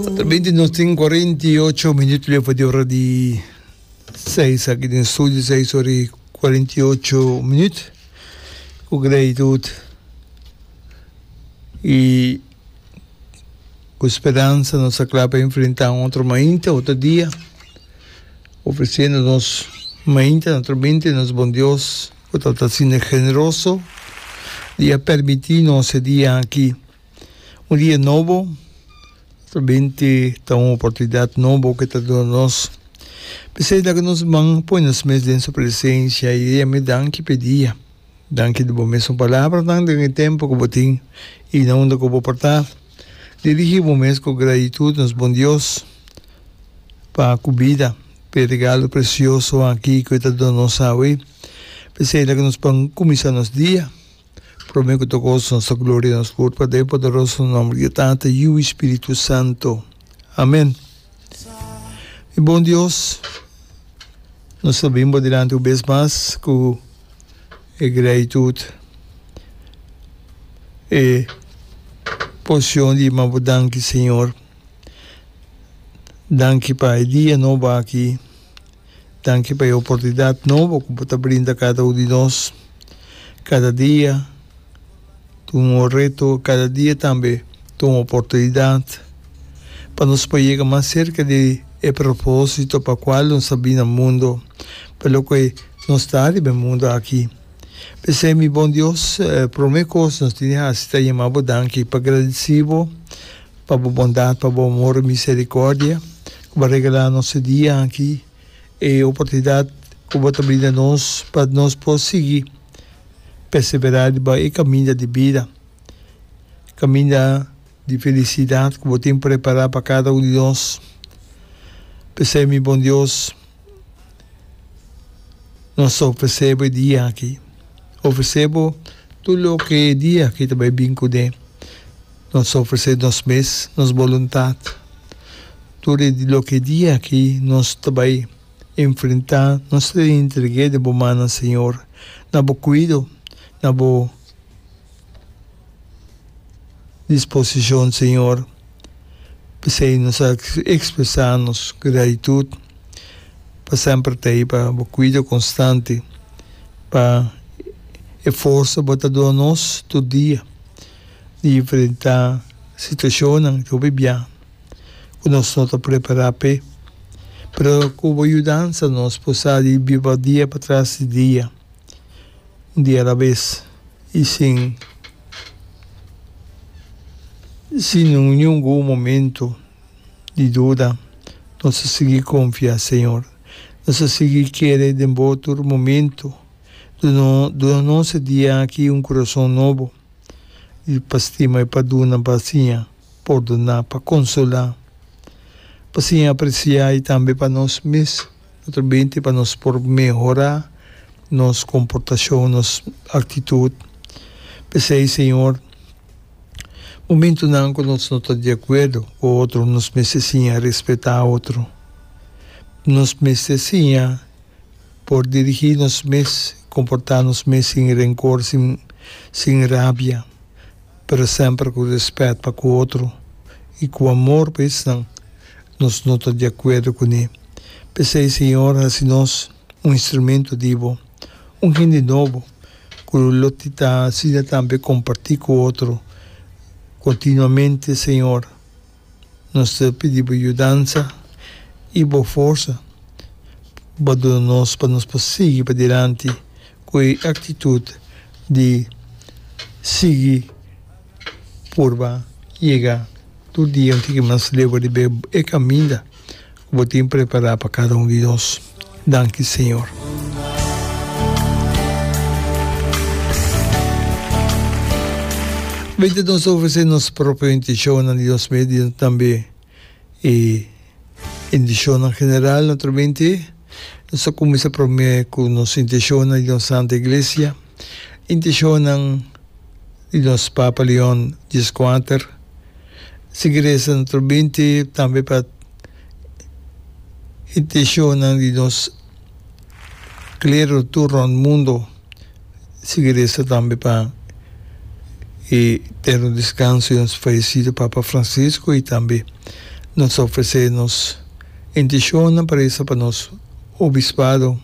Atrabente nos tin cuarenta y ocho minuto leu pa di ora di seis aki den studio, seis ora y cuarenta y ocho minuto cu gratitud y cu speransa nos ta cla pa enfrenta un otro mainta, otro dia, ofreciendo nos mainta na atrabente nos Bon Dios cu ta ta asina generoso di a permiti nos e dia aki. Un dia nobo, otro binti ta un oportunidad nobo ke ta duna nos. P'esei laga nos man pone nos mes den su presencia i di ami danki p'e dia. Danki di bo mes un palabranan den e tempu ku bo tin i na unda ku bo por ta. Dirigi bo mes ku gratitud nos Bon Dios pa ku bida, p'e regalo presioso aki ku e ta duna nos awe. P'esei laga nos pan kuminsá nos dia. Prome ku ta goso nos ta gloria nos Por pata e poderoso nomber di Tata, Yiu i Spiritu Santo. Amen. Mi bon Dios, nos ta bin bo dilanti un bes mas ku e gratitut, e posion di manda bo danki, Señor. Danki pa e dia nobo aki. Danki pa e oportunidat nobo ku bo ta brinda kada un di nos. Kada dia ta un reto, kada dia tambe ta un oportunidat pa nos por yega mas serka di e propósito pa kual nos a bini na mundo, pa loke nos ta riba e mundo aki. P'esei mi Bon Dios, promé kos nos tene hasi ta yama bo danki pa gradisi bo. Pa bo bondat, pa bo amor i misericordia cu bo a regala nos e dia aki, e oportunidad cu bo ta brinda nos pa nos por sigui persevera riba e caminda di bida, caminda di felicidad cu bo tin prepara pa cada un di nos. P'esei mi bon Dios, nos ta ofrece bo e dia aki, ofrece bo tur loke e dia aki ta bay bin cune. Nos ofresé nos mes, nos boluntat, tur e loke dia aki nos ta bai enfrentá, nos ta entreg'é den bo mannan, Señor, na bo kuido, na bo disposicion, Señor. P'esei nos ta expresá nos gratitut pa semper ta ei, pa bo kuido constante, pa e forsa bo ta duna nos tur dia. di enfrentá situashonnan ku bibiá ku nos no ta prepará p'e. Pero ku bo yudansa nos por sa di biba dia patras di dia, un dia alabes i sin sin ningun momentu di duda. Nos a sigui konfiá, Señor. Nos a sigui kere den bo tur momentu. Duna nos e dia aki un kurason nobo. i pa stima i pa duna pa siña pordoná, pa konsolá, pa siña apresiá i tambe pa nos mes ta ta binte pa nos por mehorá nos komportashon, nos aktitut. P'esei, Señor, momentunan ku nos no ta di akuerdo ku otro, nos mester siña respetá otro. Nos mester siña por dirigí nos mes, komportá nos mes sin renkor, sin sin rabia, pero semper ku rèspèt pa ku otro i ku amor pa esnan nos no ta di akuerdo kuné. P'esei, Señor, hasi nos un instrumento di Bo, un hende nobo ku lo ta asina tambe kompartí ku otro kontinuamente, Señor. Nos ta pidi bo yudansa i bo forsa pa duna nos pa nos por sigui padilanti ku e aktitut di sigui purba yega tur dia un tiki mas leu riba e kaminda. ku bo tin prepará pa kada un di nos. Danki, Señor. Mester nos ofresé nos propio intishonnan di nos mes, di tambe e intishonnan general naturalmente. Nos ta kuminsá promé ku nos intishonnan di nos Santa Iglesia, intishonnan di nos Papa Leon Dies Kuater, sigui resa nutru binti, tambe pa intishonnan di nos klero tur rònt mundu. sigui resa tambe pa e eterno descanso di nos fallecido Papa Francisco y tambe nos a ofrece nos intencionnan pa resa pa nos Obispado,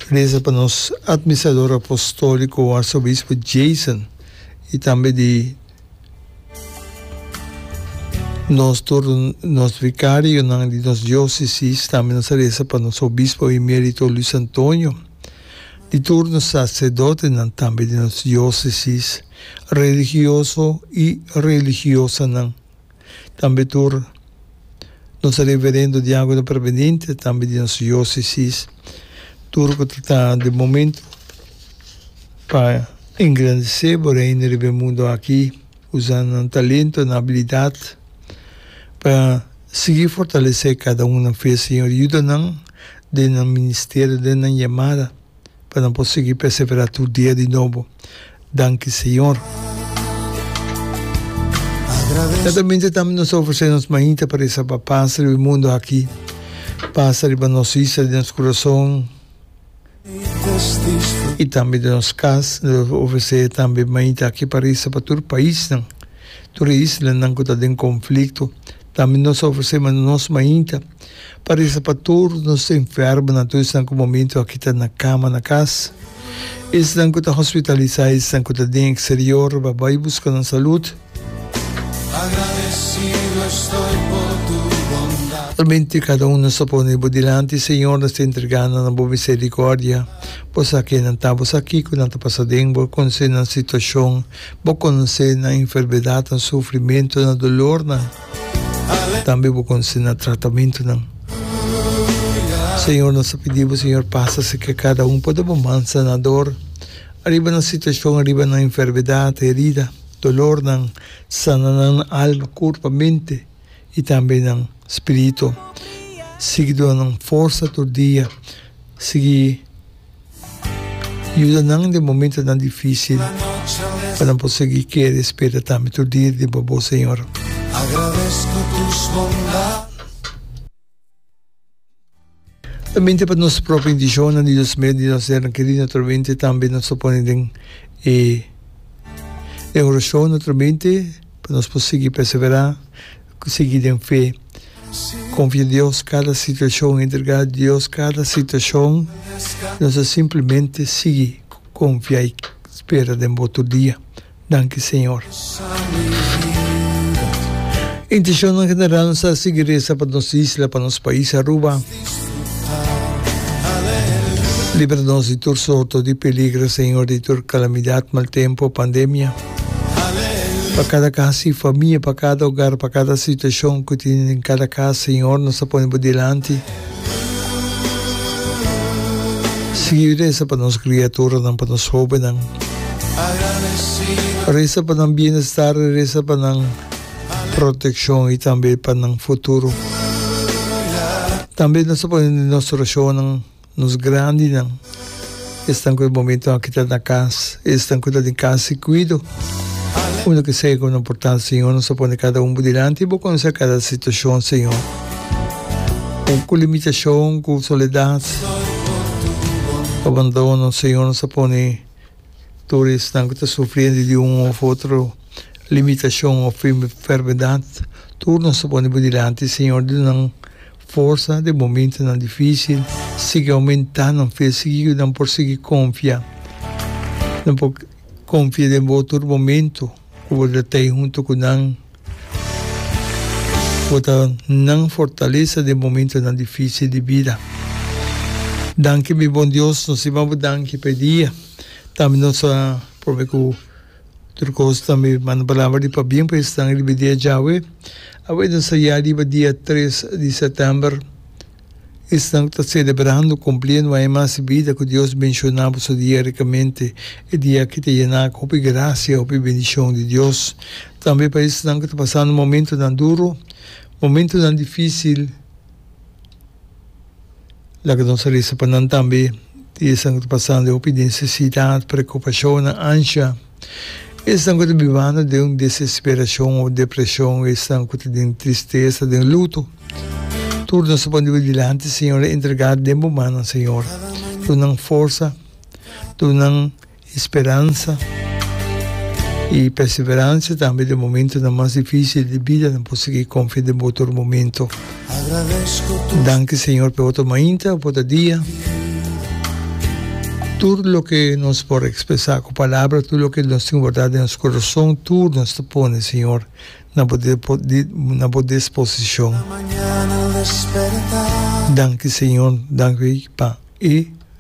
resa pa nos Administrador Apostolico Arzobispo Jason y tambe di nos tur nos Vicarionan di nos Diocesis, tambe nos a resa pa nos Obispo Emerito Luis Antonio. Di tur nos sacerdotenan, tambe di nos diocesis religioso y religiosanan, tambe tur nos reverendo diacono permanente tambe di nos diocesis, tur cu ta den momento pa engrandece bo Reino riba e mundo aki, usa nan talento, nan habilidad pa sigui fortalece cada un nan fe, Señor, yuda nan. den nan ministerio, den nan yamada, pa nan por sigui perseverá tur dia di nobo. Danki Señor. Siertamente tambe nos ta ofresé nos mainta pa resa pa pas riba e mundu aki, pas riba nos isla di nos kurason. I tambe den nos kas no debe ofresé tambe mainta aki pa resa pa tur paisnan, tur e islanan ku ta den konflikto. Tambe nos a ofresé nos mainta pa resa pa tur nos enfermonan, tur esnan ku momentu aki ta na kama na kas, esnan ku ta hospitalisá, esnan ku ta den eksterior pa bai buska nan salut. Solamente kada un nos ta pone bo dilanti, Señor, nos ta entrega nan na bo misericordia. Bo sa ken nan ta, bo sa kico nan ta pasa den, bo conoce nan situacion, bo conoce nan enfermedadnan, sufrimentonan, dolornan, tambe bo conoce nan tratamentonan. Señor, nos ta pidi bo, Señor, pasa cerca cada un, pone bo mansa na dor, ariba nan situacion, ariba nan enfermedad, herida. Dolornan, sana nan alma, kurpa, mente i tambe nan spiritu. Sigui duna nan forsa tur dia. Sigui yuda nan den momentunan difísil pa nan por sigui kere spera tambe tur dia riba bo, Señor. Solamente pa nos propio intishonnan di nos mes di nos ser kerido naturalmente tambe nos ta pone den e e orashon naturalmente pa nos por sigui perseverá sigui den fe konfia in Dios kada situashon entrega Dios kada situashon nos ta simplemente sigui konfia i spera den bo tur dia. Danki Señor. Intencion general nos ta sigui reza pa nos isla, pa nos pais Aruba. Libra nos di tur sorto di peligro Señor, di tur calamidad, mal tempo, pandemia. Pa cada cas y famia, pa cada hogar, pa cada situacion cu tin den cada cas Señor nos ta pone bo dilanti. Sigui resa pa nos kriaturanan, pa nos hobennan. Resa pa nan bienestar, resa pa nan protekshon i tambe pa nan futuro. Tambe nos ta pone nos orashonnan nos grandinan. Esnan cu e momento aki ta na cas y esnan cu ta den cas si cuido. Uno que segue con no portal, Señor, nos a pone cada un bo dilanti y bo conoce cada situacion, Señor. Aun cu limitacion, cu soledad, cu abandono, Señor, nos a pone tur esnan cu ta sufriendo di un of otro limitacion of enfermedad, tur nos a pone bo dilanti, Señor, di nan. Forsa den momentunan difísil sigui oumentá. Nan fe sigui yud'é nan por sigui konfia. Nan por konfia den Bo tur momentu ku Bo ta t'ei huntu ku nan. Bo ta nan fortalesa den momentunan difísil di bida. Danki mi Bon Dios, nos a yama Bo danki pa e dia. Tambe nos a probe ku. Tur kos tambe manda palabra di pabien pa esnan riba dia djawe. Awe ta sayá riba dia tres di sètèmber. Esnan ku ta selebrando kumplí e nuai mas di bida ku Dios menshoná pa su dia rikamente, e dia ki ta yená ku hopi grasia, hopi bendishon di Dios. Tambe pa esnan ku ta pasando momentunan duru, momentunan difísil. Laga nos a risa pa nan tambe. Di esnan ku ta pasando e hopi di nesesidat, preokupashonnan, ansha. Esnan ku ta bibando den un desesperashon òf depreshon, esnan ku ta den tristesa, den luto. Tur nos ta pon dibu dilanti, Señor, e entregá den bo mannan, Señor. Duna nan forsa, duna nan. E speransa i perseverancia tambe den momentonan mas dificil di bida nan por sigui confia den bo tur momento. Danki Señor p'e otro mainta, p'e otro dia. Tur loke nos por expresa cu palabra, tur loke nos tin guarda den nos corazon, tur nos ta pone Señor na bo na bo disposicion. Danki Señor, danki pa e.